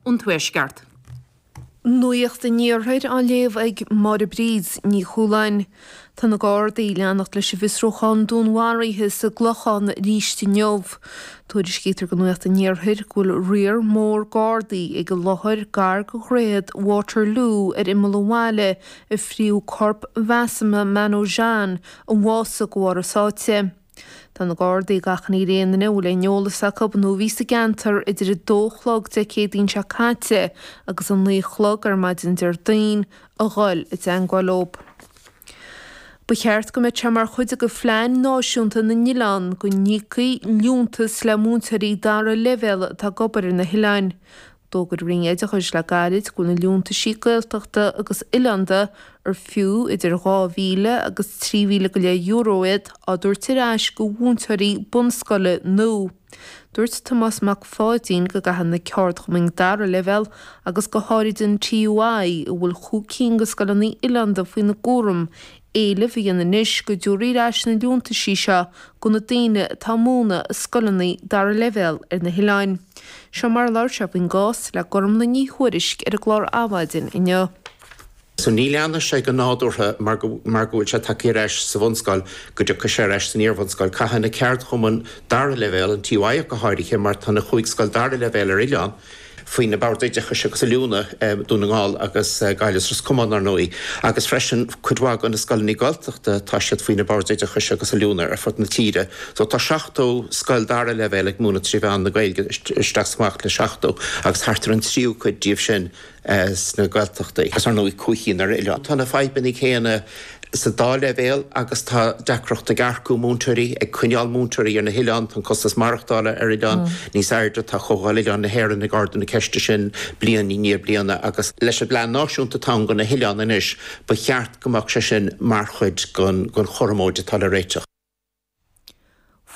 an Tuaisceart. Nuacht an Iarthair á léamh ag Máire Bríd Ní Chualáin. Tá na Gardaí ag leanacht leis an bhfiosrúchán dúnmharaithe sa gClochán arís inniu. Tuairiscítear go Nuacht an Iarthair go bhfuil riar mór Gardaí ag an láthair gar go Dhroichead Waterloo ar imeall an bhaile a fríodh corp Mhasumeh Manojan a bhásaigh go bharr a sáite. Tá na Gardaí ag achainí ar aon duine a bhfuil aon eolas acu nó a bhí sa gceantar idir 2 a chlog Dé Céadaoin seo caite agus 9 a chlog ar maidin Déardaoin a dhul i dteagmháil leo. Ba cheart go mbeadh sé mar chuid de phlean náisiúnta na n-oileán go n-íocfaí liúntas le múinteoirí dara leibhéal atá ag obair ar na hoileáin. D'fhógair an Roinn Oideachais le gairid go bhfuil na liúntaisí Gaeltachta agus oileánda, ar fiú idir 2,000 agus 3,000 go leith euro iad, á dtabhairt ar ais go mhúinteoirí bunscoile nua. Dúirt Tomás Mac Pháidín go gcaithfidh na ceardchumainn dara leibhéal agus go háirid an TUI, a bhfuil chúig cinn de scoileanna oileánda faoina gcúram, Éileamh a dhéanamh anois go dtabharfaí ar ais na liúntaisí seo do na daoine atá ag múineadh i scoileanna dara leibhéal ar na hoileáin. Seo mar a labhair sé faoin gcás le Gormlaith Ní Thuairisg ar an gclár Adhmhaidin inniu. So ní leanfaidh sé go nádúrtha mar go mar go bhfuil sé tagtha ar ais sa bhunscoil go dtiocfaidh sé ar ais san iarbhunscoil. Caithfidh na ceardchumainn dara leibhéal, an TUI ach go háirithe mar tá na chúig scoil dara leibhéal ar oileán, faoi na Boird Oideachais agus Oiliúna, Dún na nGall agus Gaillimh is Ros Comáin, ar ndóigh, agus freisin cuid mhaith de na scoileanna Gaeltachta, tá siad faoi na Boird Oideachais agus Oiliúna ar fud na tíre. So tá 70 scoil dara leibhéal ag múineadh trí mheán na Gaeilge, isteach is amach le 70, agus thart ar an tríú cuid díobh sin sna Gaeltachtaí, agus ar ndóigh, cúig cinn ar oileán. Tá na fadhbanna céanna sa dá leibhéal agus tá deacracht ag earcú múinteoirí, ag coinneáil múinteoirí ar na hoileáin, tá an costas maireachtála ar oileáin níos airde, tá Comhdháil Oileáin na hÉireann ag ardú na ceiste sin bliain i ndiaidh bliana agus leis an bplean náisiúnta atá ann do na hoileáin anois ba cheart go mbeadh sé sin mar chuid den chothromóid atá le réiteach.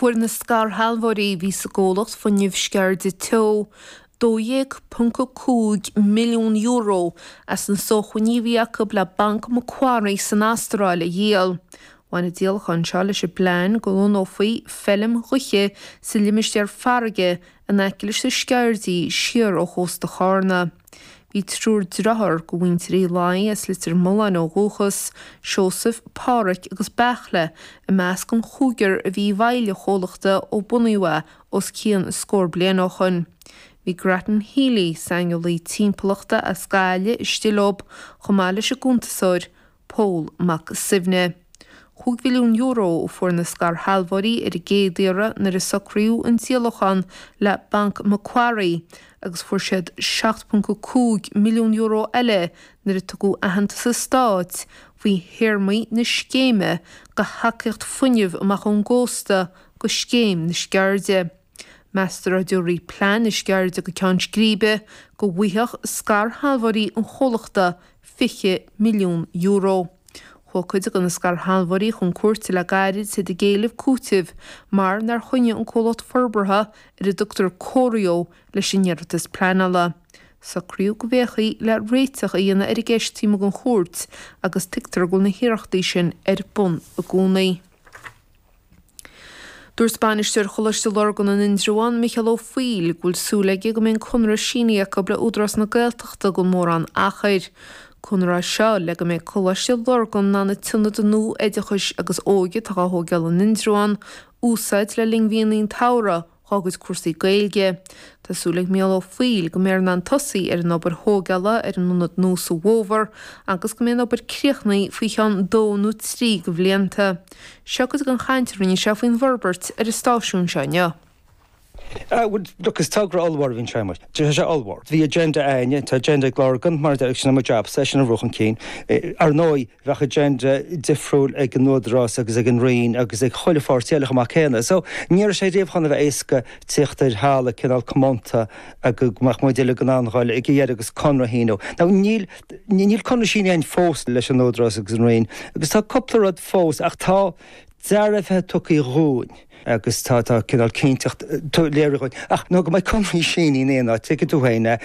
Fuair na scairshealbhóirí a bhí sa gcomhlacht Fuinneamh Sceirde Teo €12.5 milliún as na sócmhainní a bhí acu le Banc Macquarie san Astráil a dhíol. Bhain an díolachán seo leis an bplean go lonnófaí feilm ghaoithe sa limistéar farraige in aice leis na Sceirdí siar ó chósta Chárna. Bhí triúr driotháir de mhuintir Uí Laidhe as Leitir Mealláin ó dhúchas, Seosamh, Pádhraic agus Beartla, i measc an chúigir a bhí i bhfeighil an chomhlachta ó bunaíodh é os cionn scór bliain ó shoin. Bhí Grattan Healy, saineolaí timpeallachta as Gaillimh, istigh leob, chomh maith leis an gcuntasóir, Pól Mac Suibhne. Cúig mhilliún euro a fuair na scairshealbhóirí ar an gcéad iarraidh nuair a socraíodh an díolachán le Banc Macquarie agus fuair siad €7.5 milliún eile nuair a tugadh aitheantas an Stáit faoi théarmaí na scéime de thacaíocht fuinnimh amach ón gcósta go scéim na Sceirde. Meastar dá dtabharfaí plean na Sceirde go ceann scríbe go bhfaigheadh scairshealbhóirí an chomhlachta €20 milliún. Chuaigh cuid de na scairshealbhóirí chun cúirte le gairid ag éileamh cúitimh mar nár choinnigh an comhlacht forbartha, ar a dtugtar Corio, leis an iarratas pleanála. Socraíodh go bhféachfaí le réiteach a dhéanamh ar an gceist taobh amuigh den chúirt agus tuigtear go bhfuil na hiarrachtaí sin ar bun i gcónaí. Dúirt Bainisteoir Choláiste Lurgan in Indreabhán, Micheál Ó Foighil, go bhfuil súil aige go mbeidh an conradh sínithe acu le Údarás na Gaeltachta gan mórán achair. Conradh seo le go mbeidh Coláiste Lurgan in ann an t-ionad nua oideachais agus óige atá á thóigeáil in Indreabhán úsáid le linn mhíonna an tsamhraidh, dhá gcuid cúrsaí Gaeilge. Tá súil ag Mícheál Ó Foighil go mbeidh siad in ann tosaí ar an obair thóigeála ar an ionad nua sa bhfómhar agus go mbeidh an obair críochnaithe faoi cheann dó nó trí de bhlianta. Seo cuid den chaint a rinne sé faoin bhforbairt ar an stáisiún seo inniu. Ah bhuel look is togra ollmhór a bhí ann sé mar tá sé ollmhór. Bhí agenda againne, tá agenda ag Lurgan mar sin i mo jab-sa, é sin a bhrú chun cinn. Ar ndóigh, bheadh agenda difriúil ag an Údarás agus ag an Roinn agus ag chuile pháirtí eile chomh maith céanna. So, ní raibh sé riamh chun a bheith éasca tíocht ar thalamh cineál comónta go mbeadh muid uilig in ann dul ag a dheireadh agus conradh a shíniú. Now, níl, níl conradh sínithe againn fós leis an Údarás agus an Roinn agus tá cúpla rud fós ach tá dearbhuithe tugtha dhúinn. agus tá cineál cinnteacht léirithe dúinn ach nó go mbeidh conraí sínithe in áit. Tuigfidh tú féin é.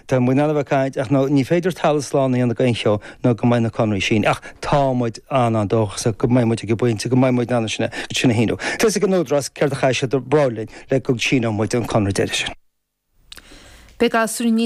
Tá muid in ann a bheith ag caint ach ní féidir talamh slán a dhéanamh d'aon cheo nó go mbeidh na conraí sínithe ach tá muid an-an-dóchasach go mbeidh muid ag an bpointe go mbeidh muid in ann iad sin a shíniú. Tá 's ag an Údarás céard a chaithfidh siad a rá linn le go síneoidh muid an conradh deiridh sin. Beidh gasúir níos.